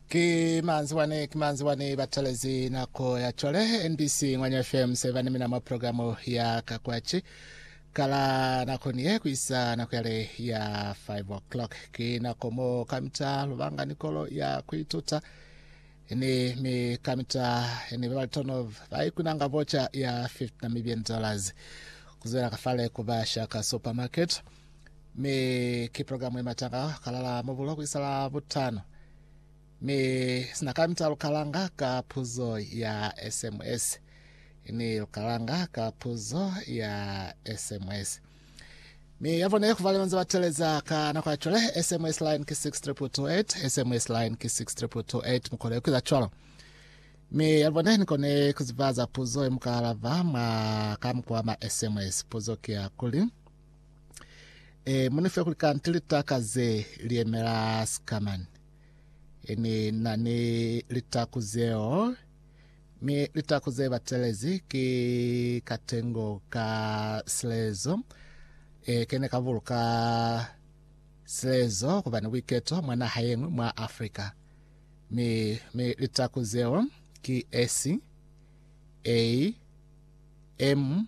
Ki manzi wani, ki manzi wani batalezi nako ya cwale. NBC Ngwanya FM seba ni mina mwa program ya ka kwaci kala nakoni ye kuisa nako yale ya 5 o'clock. Ki nako mo kamita lubanga ni kolo ya kuituta ni mi kamita ni babalitono ba ikunanga vocha ya 50 Namibian dollars kuzwela kafale kuba Shaka Supermarket. Mi ki program ye mata ka kalala mubulo ku isa la butano. Mi sina ka mita lukalanga ka puzo ya SMS. Ni lukalanga ka puzo ya SMS. Mi yavone kuva leonze bateleza ka nako ya chole SMS line ki 62228 SMS line ki 62228 mukole kuiza chwalo. Mi yavone nikone kuzivaza puzo ye mukalava mwa ka mukwa ma SMS puzo ki ya kuli. E, muni fe kuli kanti litaka ze liemela Scaman. E, ni na ni litaku zeo, mi litaku ze batelezi ki katengo ka silezo. E, ke ne ka buluka silezo kuba ni buiketo mwa naha ye ñwi mwa Afrika. Mi, mi litaku zeo ki S, A, M,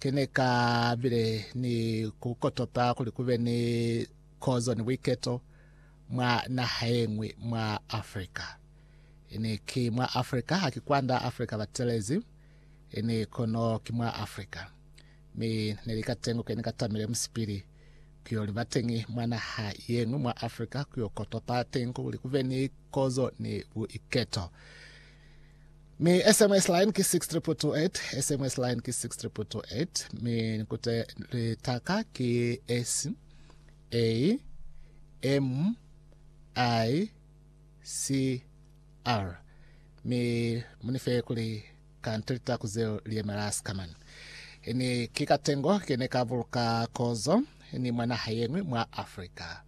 Ki ne ka bile ni ku kotota kuli ku be ni kozo ni buiketo mwa naha ye ñwi mwa Africa. Ini ki mwa Africa, haki kwanda Africa ba telezi, ini kono ki mwa Africa. Mi ne li ka tengo ke ni ka tamile musipili ku yo liba teñi mwa naha ye ñwi mwa Africa, ku yo kotota teñi kuli ku be ni kozo ni buiketo. Mi SMS line ki 62228, SMS line ki 62228, mi nikute litaka ki S A M I C R. Mi munife kuli kante litaku zeo liyemela sikaman. Ini ki katengo kene ka buluka kozo ini mwa naha yengwe mwa Africa.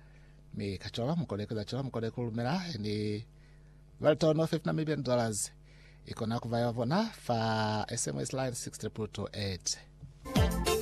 Mi kacola mukole keza cola mukole kulumela ini Welton of ip Namibian dollars ikona kuba ya bona fa SMS line 62228.